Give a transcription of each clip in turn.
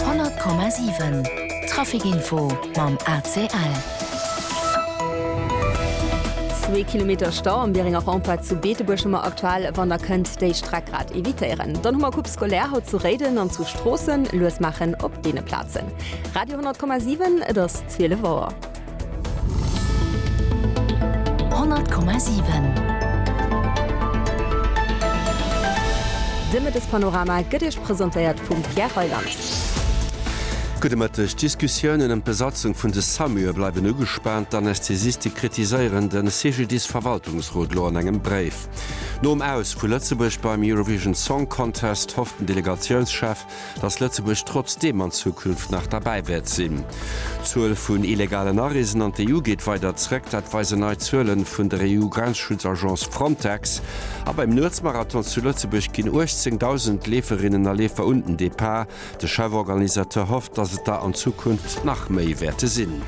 100,7 Trafic Info mam ACL. Zwee Kilometer Stau am Bieringer Rempart zu Beetebuerg hu mer aktuell. Wann der kënnt déi Streck grad evitéieren, dann hu mer Coupe scolaire haut zu Réiden an zu Stroossen. Lues maachen op deene Plazen. Radio 10,7 Et ass 12 Auer. 100,7 De Mëttespanorama gëtt Iech presentéiert vum Pierre Reyland. Gudde Mëtteg. D'Diskussiounen ëm d'Besatzung vun de Samur bleiwen ugespaant. D'Anästhesiste kritiséieren de CGDIS-Verwaltungsrot lo an engem Bréif. Nom Aus vu Lëtzebuerg beim Eurovision Song Contest hofft den Delegatiounschef, datt Lëtzebuerg trotzdeem an Zukunft nach derbäi wäert sinn. D'Zuel vun illegalen Areesen an d'EU geet weider zréck, dat weisen nei Zuele vun der EU-Grenzschutzagence Frontex. A beim Nuetsmarathon zu Lëtzebuerg ginn 18.000 Leeferinnen a Leefer un den Depart. De Chef-Organisateur hofft, datt et der an Zukunft nach méi wäerte sinn.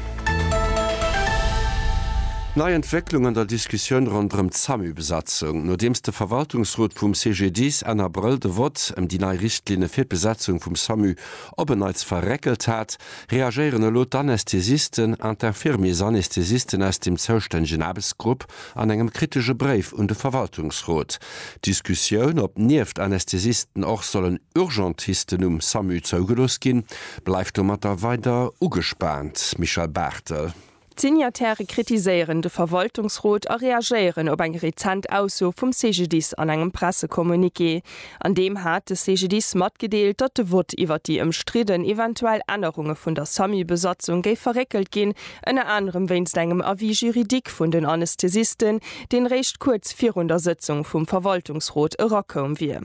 Nei Entwécklung an der Diskussioun ronderëm d'Samu-Besatzung. Nodeems de Verwaltungsrot vum CGDIS Enn Abrëll de Vott ëm déi nei Richtlinne fir d'Besetzung vum Samu op en Neits verréckelt hat, reagéieren elo d'Anästhesisten an d'Infirmiers-Anästhesisten aus dem zoustännegen Aarbechtsgrupp An engem kritesche Bréif un de Verwaltungsrot. D'Diskussioun, ob nieft Anästhesisten och sollen Urgentisten um Samu zougelooss ginn, bleift domatter weider ugespaant. Michèle Barthel. D'Signataire kritiséieren de Verwaltungsrot a reagéieren op eng rezent Ausso vum CGDIS an engem Pressecommuniqué. An deem hat de CGDIS matgedeelt, datt de Vott iwwer déi ëmstridden eventuell Ännerunge vun der SAMU-Besatzung géif verréckelt ginn, ënner anerem wéinst engem Avis juridique vun den Anästhesisten, deen réischt kuerz virun der Sëtzung vum Verwaltungsrot erakoum wier.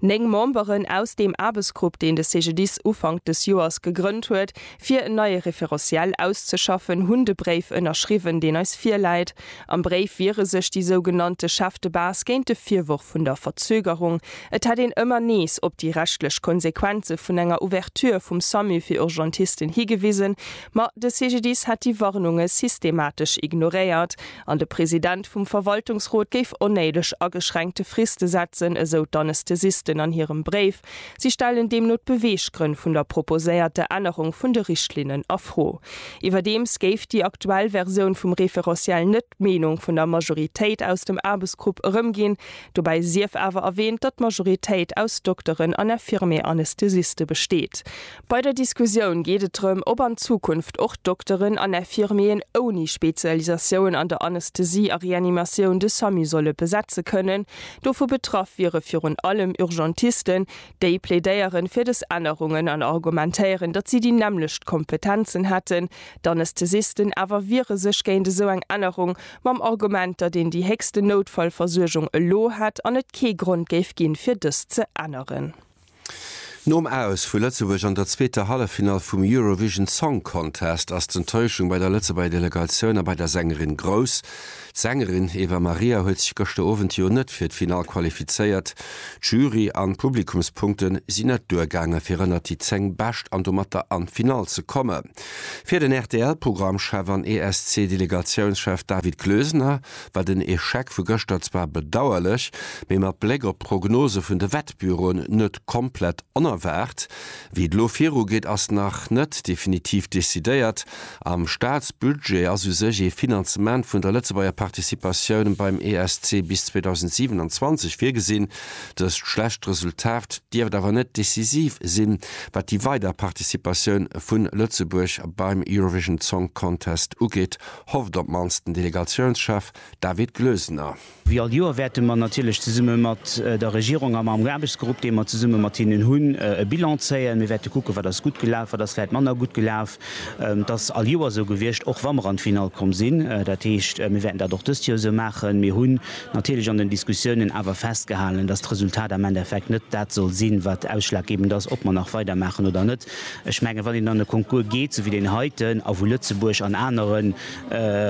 Néng Memberen aus deem Aarbechtsgrupp, deen de CGDIS Ufank des Joers gegrënnt huet, fir en neie Référentiel auszeschaffen, hunn de Bréif ënnerschriwwen, deen eis virläit. Am Bréif wiere sech déi sougenannte Chefs de base géint de Virworf vun der Verzögerung. Et hätt een ëmmer nees op déi rechtlech Konsequenze vun enger Ouverture vum Samu fir Urgentisten higewisen, ma de CGDIS hätt déi Warnunge systematesch ignoréiert an de President vum Verwaltungsrot géif onnéideg ageschränkte Friste setzen, esou d'Anesthesisten an hirem Bréif. Si stellen deemno d'Beweeggrënn vun der proposéierter Ännerung vun de Richtlinnen a Fro. Iwwerdeems géif déi aktuell Versioun vum Référentiel net d'Meenung vun der Majoritéit aus dem Aarbechtsgrupp erëmginn. Dobäi sief awer erwähnt, datt d'Majoritéit aus Dokteren an Infirmier-Anästhesiste besteet. Bei der Diskussioun geet et drëm, ob an Zukunft och Dokteren an Infirmieren ouni Spezialisatioun an der Anästhesie a Reanimatioun de Samu solle besetze kënnen. Dovu betraff wiere virun allem Urgentisten. Déi plädéieren fir des Ännerungen an argumentéieren, datt si déi nämmlecht Kompetenzen hätten. D'Anästhesisten awer wiere sech géint esou eng Ännerung, mam Argument, datt een déi héchsten Noutfallversuergung elo hätt an et kee Grond géif ginn, fir dës ze änneren. Nom Aus vu Lëtzebuerg an der zweeter Halleffinall vum Eurovision Song Contest ass d'Enttäuschung bei der Lëtzebuerger Delegatioun a bei der Sängerin grouss. D'Sängerin Eva Maria huet sech gëschter Owend jo net fir d'Finall qualifizéiert. D'Jury an d'Publikumspunkte sinn net duergaange fir ënnert déi 10 Bescht an domatter an d'Finall ze kommen. Fir den RTL-Programmchef an ESC-Delegatiounschef David Kloesener war den Echec vu gëschter zwar bedauerlech, mee mat Bléck op d'Prognose vun de Wettbüroen net komplett onerwaart. Wéi et elo viru geet, ass nach net definitiv decidéiert. Am Staatsbudget ass u sech ee Finanzement vun der Lëtzebuerger Participatioun beim ESC bis 2027 virgesinn. Dëst schlecht Resultat dierft awer net decisiv sinn, wat déi weider Participatioun vu Lëtzebuerg beim Eurovision Song Contest ugeet, hofft op d'mannst den Delegatiounschef David Glösener. Wéi all Joer wäerte mer natierlech zesumme mat der Regierung a mam Aarbechtsgrupp, dee mer zesumme mat hinnen hunn, e Bilan zéien. Mir wäerte kucken, wat ass gutt gelaf, wat ass vläicht manner gutt gelaf. Dat ass all Joer esou gewiescht, och wa mer an d'Finall komm sinn. Dat heescht, mir wäerten dat och dëst Joer esou maachen. Mir hunn natierlech an den Diskussiounen awer festgehalen, dass d'Resultat am Endeffekt net dat soll sinn, wat ausschlaggebend ass, ob mer nach weidermaachen oder net. Ech mengen, wann een an e Concours geet, sou wéi deen heiten, a wou Lëtzebuerg an anere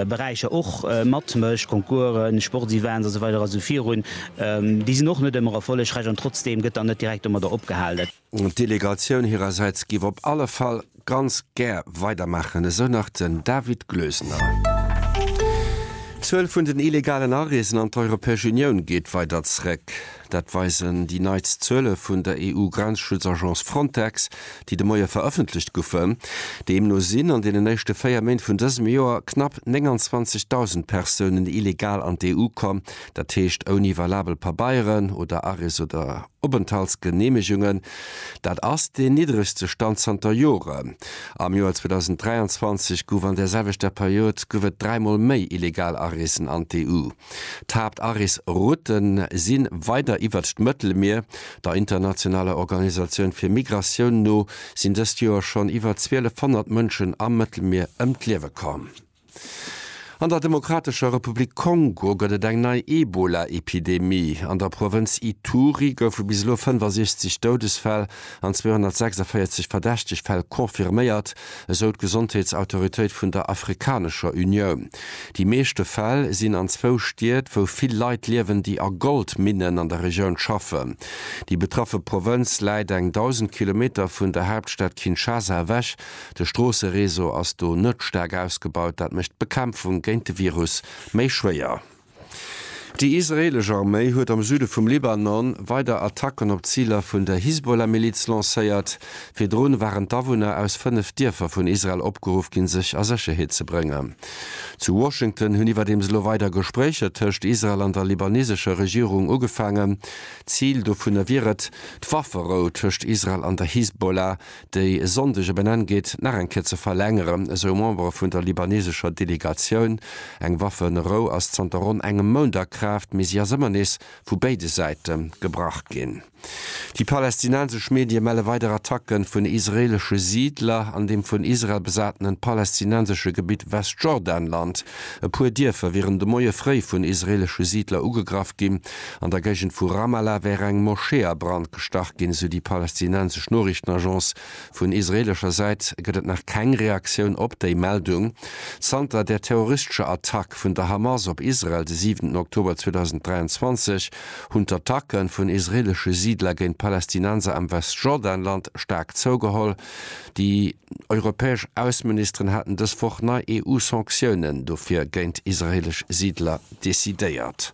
Beräicher och matmécht, Concoursen, Sportsevents a sou weider a sou virun, déi sinn och net ëmmer erfollegräich an trotzdeem gëtt dann net direkt domadder opgehalen. D'Delegatioun hirersäits géif op alle Fall ganz gär weidermaachen, esou nach den David Glösener. D'Zuel vun den illegalen Areesen an d'Europäesch Unioun geet weider zréck. Dat weisen déi neitst Zuele vun der EU-Grenzschutzagence Frontex, déi de Moie verëffentlecht goufen. Deemno sinn an deenen éischte véier Méint vun dësem Joer knapp 29.000 Persounen illegal an d'EU komm, dat heescht ouni valabel Pabeieren oder Arrêts oder Openthaltsgeneemegungen. Dat ass deen niddregste Stand zanter Joren. Am Joer 2023 gouf an där selwechter Period gouf et dräimol méi illegal Areesen an d'EU. D'Haaptarees-Routen si weider iwwert d'Mëttelmier. Der internationaler Organisatioun fir Migratioun no sinn dëst Joer schonn iwwer 1.200 Mënschen am Mëttelmier ëm d'Liewe komm. An der Demokratescher Republik Kongo gëtt et eng nei Ebola-Epidemie. An der Provënz Ituri goufe bis elo 65 Doudesfäll an 246 verdächteg Fäll confirméiert, esou d'Gesondheetsautoritéit vun der Afrikanescher Unioun. Déi meeschte Fäll sinn an zwou Stied, wou vill Leit liewen, déi a Goldminnen an der Regioun schaffen. Déi betraffe Provënz läit eng 1.000 Kilometer vun der Haaptstad Kinshasa ewech. De Stroossereseau ass do net staark ausgebaut, dat mécht d'Bekämpfung géint de Virus méi schwéier. Déi israeelesch Arméi huet am Süde vum Libanon weider Attacken op Ziler vun der Hisbollah-Miliz lancéiert. Virdrun waren d'Awunner aus fënnef Dierfer vun Israel opgeruff ginn, sech a Sécherheet ze bréngen. Zu Washington hunn iwwerdeems elo weider Gespréicher tëscht Israel an der libanesescher Regierung ugefaangen. Zil dovunner wier et, d'Wafferou tëscht Israel an der Hisbollah déi e Sonndeg e Benenn geet, nach eng Kéier ze verlängeren, esou e Member vun der libanesescher Delegatioun. Eng Waffenerou ass zanter ronn engem Mount a Kraaft, mee si ass ëmmer nees vu béide Säite gebrach ginn. Déi palästinensesch Medie melle weider Attacke vun israeelesche Siidler an dem vun Israel besatenen palästinensesche Gebitt Westjordanland. E puer Dierfer wieren de Moie fréi vun israeelesche Siidler ugegraff ginn, An der Géigend vu Ramallah wär eng Moschee a Brand gestach ginn, sou déi palästinensesch Noriichtenagence. Vun israeelescher Säit gëtt et nach keng Reaktioun op déi Meldung. Zanter der terroristescher Attack vun der Hamas op Israel de siwenten Oktober 2023 hunn d'Attacke vun israeelesche Siidler géint Palästinenser am Westjordanland staark zougeholl. Déi europäesch Ausseministeren haten dës Woch nei EU-Sanktiounen dofir géint israeelesch Siidler decidéiert.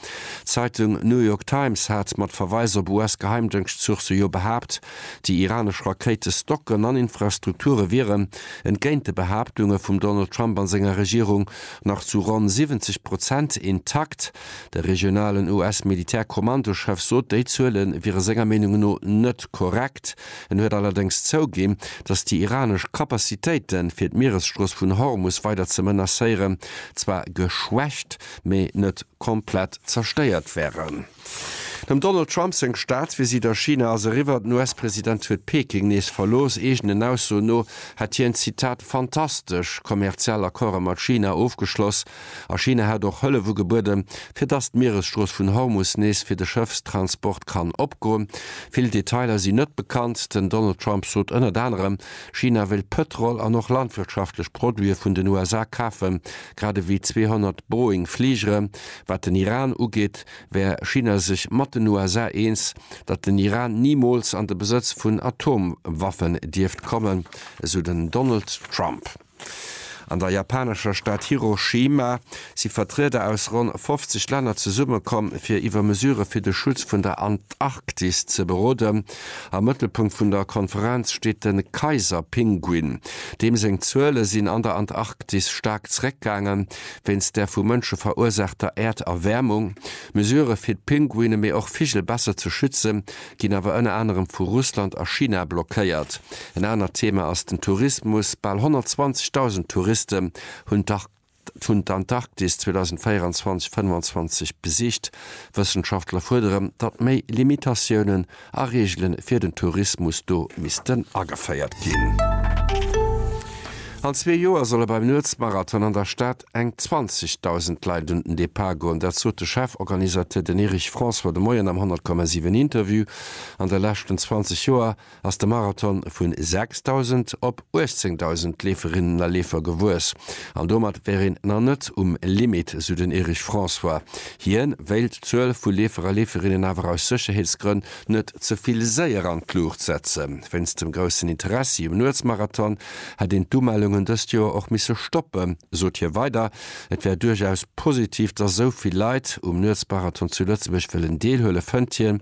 D'Zeitung New York Times hat mat Verweis op US-Geheimdëngschtsourcë jo behaapt, déi iranesch Rakéite Stocken an Infrastrukture wieren, entgéint de Behaaptunge vum Donald Trump a senger Regierung, nach zu ronn 70 Prozent intakt. De regionalen US-Militärkommandochef sot, déi Zuele wiere senger Meenung no net korrekt. En huet allerdéngs zouginn, datt déi iranesch Capacitéiten, fir d'Mieresstrooss vun Hormus weider ze menacéieren, zwar geschwächt, mee net komplett zerstéiert wären. Dem Donald Trump seng Staatsvisitt a China ass eriwwer. Den US-President huet Peking nees verlooss. Eegenen Aussoen no hätt hien, Zitat, fantastesch kommerziell Accorde mat China ofgeschloss a China hätt och Hëllef ugebueden, fir dass d'Mieresstrooss vun Hormus nees fir de Schëffstransport kann opgoen. Vill Detailer sinn net bekannt. Den Donald Trump sot ënnert anerem, China wéilt Pëtrol an och landwirtschaftlech Produite vun den USA kafen, Grad ewéi 200 Boeing Fligere. Wat den Iran ugeet, wär China sech mat den USA eens, datt den Iran nimools an de Besëtz vun Atomwaffen dierft kommen, esou den Donald Trump. An der japanescher Stad Hiroshima si Vertrieder aus ronn 50 Länner zesummekomm, fir iwwer Mesure fir de Schutz vun der Antarktis ze beroden. Am Mëttelpunkt vun der Konferenz steet de Kaiserpinguin. Deem seng Zuele sinn an der Antarktis staark zeréckgaange wéinst der vu Mënsche verursaachter Äerderwäermung. Mesurë fir d'Pinguine mee och Vigel besser ze schützen, ginn awer ënner anerem vu Russland a China blockéiert. En anert Thema ass den Tourismus. Bal 120.000 Touriste hunn d'Antarktis vun d'Antarktis 2024 25 besicht. Wëssenschaftler fuerdere, datt méi Limitatiounen a Reegele fir den Tourismus do missten ageféiert ginn. An zwee Joer solle beim Nuetsmarathon an der Stad eng 20.000 Leit un den Depart goen. Dat sot de Chef-Organisateur, den Erich François, de Moien am 100,7 Interview. An de leschten 20 Joer ass de Marathon vu 6.000 op 18.000 Leeferinnen a Leefer gewuess. An domat wär een nach net um Limit, sou den Erich François. Hien wéilt d'Zuel vu Leefer a Leeferinnen awer aus Sécherheetsgrënn net ze vill séier an d'Luucht setzen. Wéinst dem groussen Interessi um Nuetsmarathon hätt een d'Umellungen dëst Joer och misse stoppen, sot hie weider. Et wär duerchaus positiv, datt esou vill Leit um Nuetsmarathon zu Lëtzebuerg wëllen deelhuelen, fënnt hien.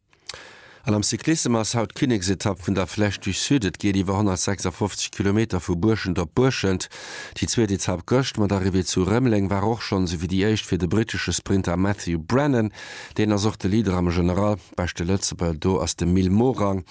An am Cyclissem ass haut d'Kinneksetapp vun der Flèche du Sud. Et geet iwwer 156 Kilometer vu Buerschent op Buerschent. Déi zweet Etapp gëscht mat Arrivée zu Rëmeleng war och schonn esou wéi déi éischt fir de brittesche Sprinter Matthew Brennan. Deen ass och de Leader am General. Beschte Lëtzebuerger do ass de Mil Morang.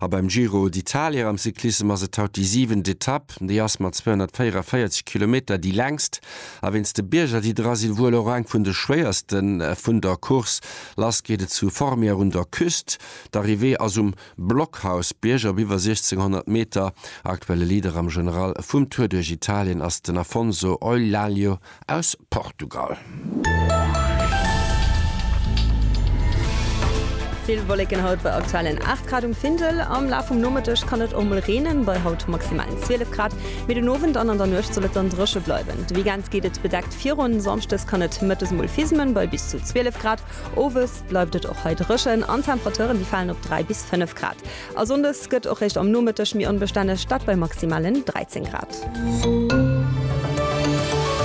A beim Giro d'Italia am Cyclissem ass et haut déi siwent Etapp. Déi ass mat 244 Kilometer déi längst a wéinst de Bierger déi dra sinn wuel och eng vun de schwéierste vun der Course. Lass geet et zu Formières un der Küst. D'Arrivée ass um Blockhausbierg op iwwer 1600 Meter. Aktuelle Leader am General vum Tour duerch Italien ass den Afonso Ollalho aus Portugal. Vill Wolleken haut bei aktuellen 8 Grad um Findel. Am Laf vum Nomëtteg kann et och mol reenen, bei haut maximal 12 Grad. Mee den Owend an an der Nuecht soll et dann dréche bleiwen. De Weekend geet et bedeckt. Virun Samschdes kann et mëttes mol fismen bei bis zu 12 Grad. Owes bleift et och hei dréchen an d'Temperateuren déi falen op 3 bis 5 Grad. A Sonndes gëtt och réischt am Nomëtteg méi onbestänneg, dat bei maximalen 13 Grad.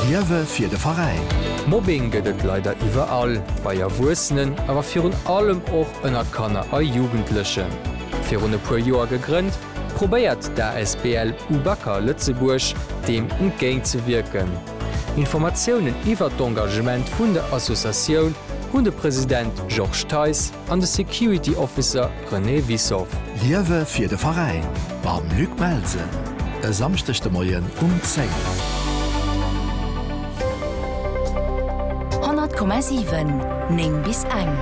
Liewe fir de Veräin! Mobbing gëtt et leider iwwerall, bei Erwuessenen, awer virun allem och ënner Kanner a Jugendlechen. Virun e puer Joer gegrënnt, probéiert d'ASBL Ubacker Lëtzebuerg deem entgéintzewierken. Informatiounen iwwert d'Engagement vun der Associatioun hunn de President Georges Theis an de Security Officer René Wissoff. Liewe fir de Veräin mam Luc Belsen e Samschdeg de Moien um 10. Honnert Komma siwen, néng bis eng.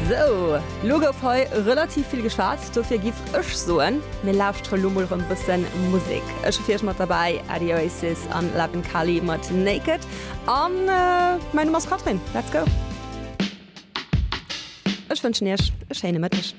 Sou, lo gouf hei relativ vill geschwat. Dofir giff ech soen, mir lauschtere lo mol rem bëssen Musek. Ech hu fir iech mat derbäi Adi Oasis an Laben Kali mat Naked. An mäin Numm ass Catherine. Let's go! Ech wënschen iech e schéine Mëtteg.